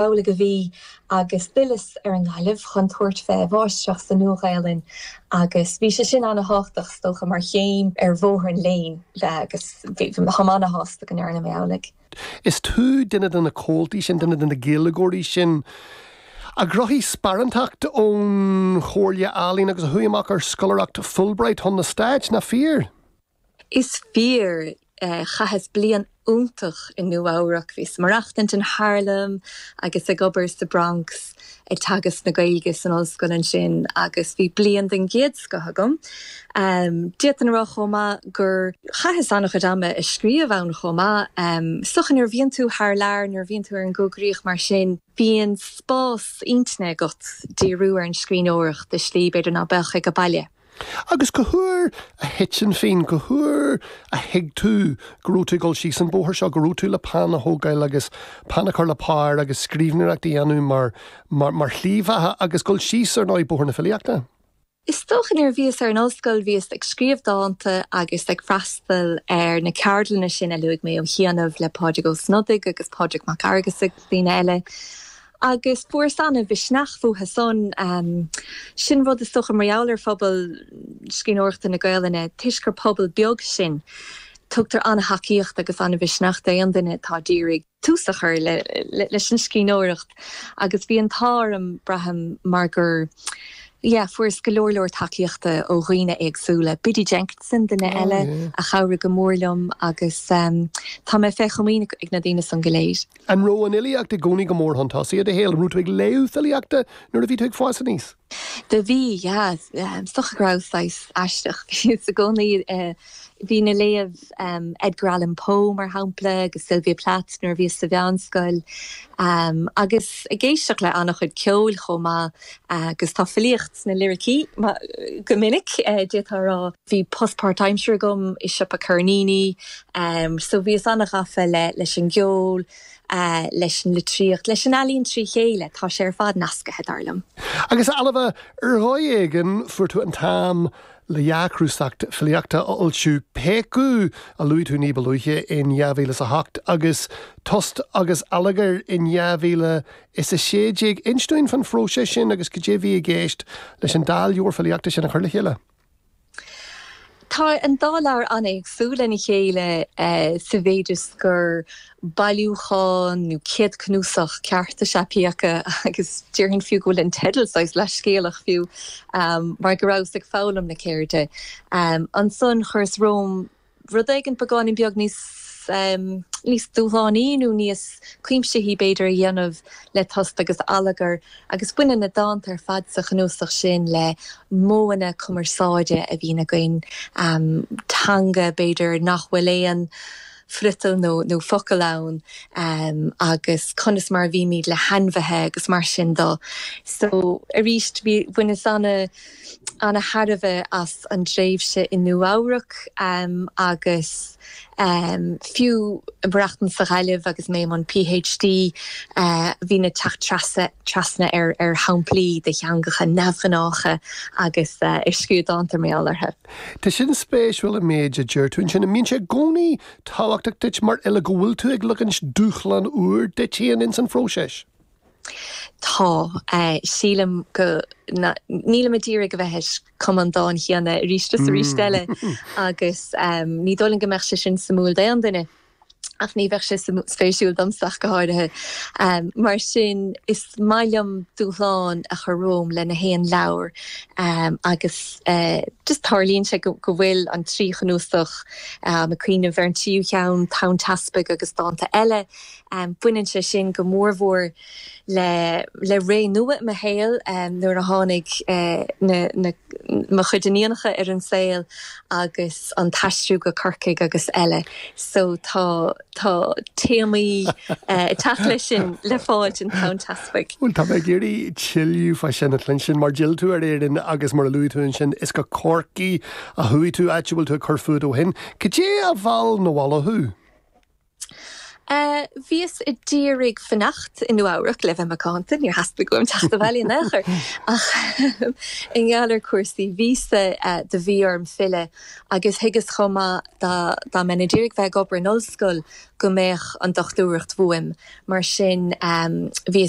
Amhlaidh a bhí agus d'fhilleas ar an nGaillimh chun tabhairt fé mháistreacht sa Nua-Ghaelainn agus bhí sé sin ana-thábhachtach is dócha mar chéim ar bhóthar an léinn agus táim ana-shásta go ndearna mé amhlaidh. Is tú duine de na comhaltaí sin, duine de na Gaeilgeoirí sin a ghnóthaigh sparánacht ón Chomhairle Ealaíon agus a chuaigh amach ar scoláireacht Fulbright chun na Stáit, nach fíor? Is fíor. Chaitheas bliain iontach i Nua-Eabhrac. Bhíos ag maireachtaint in Harlem agus ag obair sa Bronx ag teagasc na Gaeilge san ollscoil ansin agus bhí bliain den gcéad scoth agam. D'fhéadfainn a rá chomh maith gur chaitheas an-chuid ama ag scríobh ann chomh maith. Is dócha nuair a bhíonn tú thar lear, nuair a bhíonn tú ar an gcoigríoch mar sin, bíonn spás intinne agat díriú ar an scríbhneoireacht i slí b'fhéidir ná beadh ag an baile. Agus cá huair a thit an phingin, cá huair a thuig tú go raibh tú ag dul síos an bóthar seo, go raibh tú le peann a thógáil agus peann a chur le pár agus scríbhneoireacht a dhéanamh mar, mar, mar shlí bheatha agus dul síos, ar ndóigh, bóthar na filíochta? Is dócha nuair a bhíos ar an ollscoil bhíos ag scríobh dánta agus ag freastal ar na ceardlanna sin a luaigh mé ó chianaibh le Pádraig Ó Snodaigh agus Pádraig Mac Fhearghusa agus daoine eile Agus fuaras ana mhisneach uathu san. Sin rud is dócha mar gheall ar phobal scríbhneoireachta na Gaelainne, toisc gur pobal beag sinn, tugtar ana thacaíocht agus ana mhisneach d'aon duine atá ag iarraidh tús a chur leis an scríbhneoireacht agus bhí an t-ádh orm, braithim, mar gur, yeah, fuaras go leor leor tacaíochta ó dhaoine éagsúla. Biddy Jenkinson, duine eile a chabhraigh go mór liom agus tá mé fé chomaoin ag na daoine san go léir. An raibh an fhilíocht i gcónaí go mór chun tosaigh i do shaol? An raibh tú ag léamh filíochta nuair a bhí tú ag fás aníos? Do bhí, yeah. Is dócha go rabhas saghas aisteach i gcónaí. Bhínn ag léamh Edgar Allan Poe, mar shampla, agus Sylvia Plath nuair a bhíos sa mheánscoil, agus ag éisteacht le an-chuid ceoil chomh maith. Agus tá filíocht sna liricí go minic, d'fhéadfá a rá. Bhí post páirtaimsire agam i siopa ceirníní so bhíos an-ghafa leis an gceol, leis an litríocht, leis an ealaín trí chéile. Tá sé ar fad nascaithe, dar liom. Agus, Ailbhe, ar dhóigh éigin fuair tú an t-am le dhá chnuasach filíochta a fhoilsiú, Péacadh, a luaigh tú ní ba luaithe, in 2008, agus Tost agus Allagar in Is 16. Inis dúinn faoin phróiseas sin agus cad é a bhí i gceist leis an dá leabhar filíochta sin a chur le chéile. Tá an dá leabhar an-éagsúil lena chéile sa mhéid is gur bailiúchán nó céadchnuasach ceart is ea Péacadh agus déarfainn fiú go bhfuil an teideal saghas leathscéalach fiú mar go rabhas ag foghlaim na ceirde. Ansan chuireas romham. rud éigin beagáinín beag níos dúshlánaí nó níos cuimsithí, b'fhéidir, a dhéanamh le tost agus allagar, agus baineann na dánta ar fad sa chnuasach sin le modhanna cumarsáide a bhíonn againn, teanga, b'fhéidir, nach bhfuil aon friotal nó focal ann, agus conas mar a bhímid le hainmhithe agus mar sin de. So, arís, bhaineas ana. ana thairbhe as an dtréimhse i Nua Eabhrac agus fiú ag maireachtaint sa Ghaillimh agus mé i mbun Ph D bhínn ag teacht trasna ar shamplaí de theangacha neamhghnácha agus ag scríobh dánta mar gheall orthu. Tá sin spéisiúil an méid a deir tú ansin. An mbíonn sé i gcónaí tábhachtach duit mar fhile go bhfuil tú ag ligint dúshlán úr duit féin ins an phróiseas? Tá. Sílim go, nílim ag iarraidh a bheith ag cumadh an dáin chéanna arís is arís eile agus ní dóigh liom go mbeadh sé sin suimiúil d'aon duine ach ní bheadh sé spéisiúil domsa ach go háirithe. Mar sin, is maith liom dúshlán a chur romham le gach aon leabhar agus just tarlaíonn sé go bhfuil an trí chnuasach, táim ag cuimhneamh ar an tríú cheann, Tonn Teaspaigh agus Dánta Eile, Baineann sé sin go mórmhór le ré nua i mo shaol nuair a tháinig mo chuid iníonacha ar an saol agus an t-aistriú go Corcaigh agus eile so tá téamaí ag teacht leis sin le fáil in Tonn Teaspaigh. Bhuel, tá mé ag iarraidh tuilleadh fá sin a chluinstin mar d'fhill tú ar Éirinn agus mar a luaigh tú ansin, is go Corcaigh a chuaigh tú, áit a bhfuil tú ag cur fúid ó shin. Cad é a mheall 'na bhaile thú? Bhíos a d'iarraidh fanacht i Nua-Eabhrac le bheith macánta, níor theastaigh uaim teacht abhaile in aon chor, ach i ngeall ar cúrsaí víosa do bhí orm filleadh agus thuigeas chomh maith dá mbeinn a d'iarraidh bheith ag obair in ollscoil go mbeadh an dochtúireacht uaim, mar sin bhíos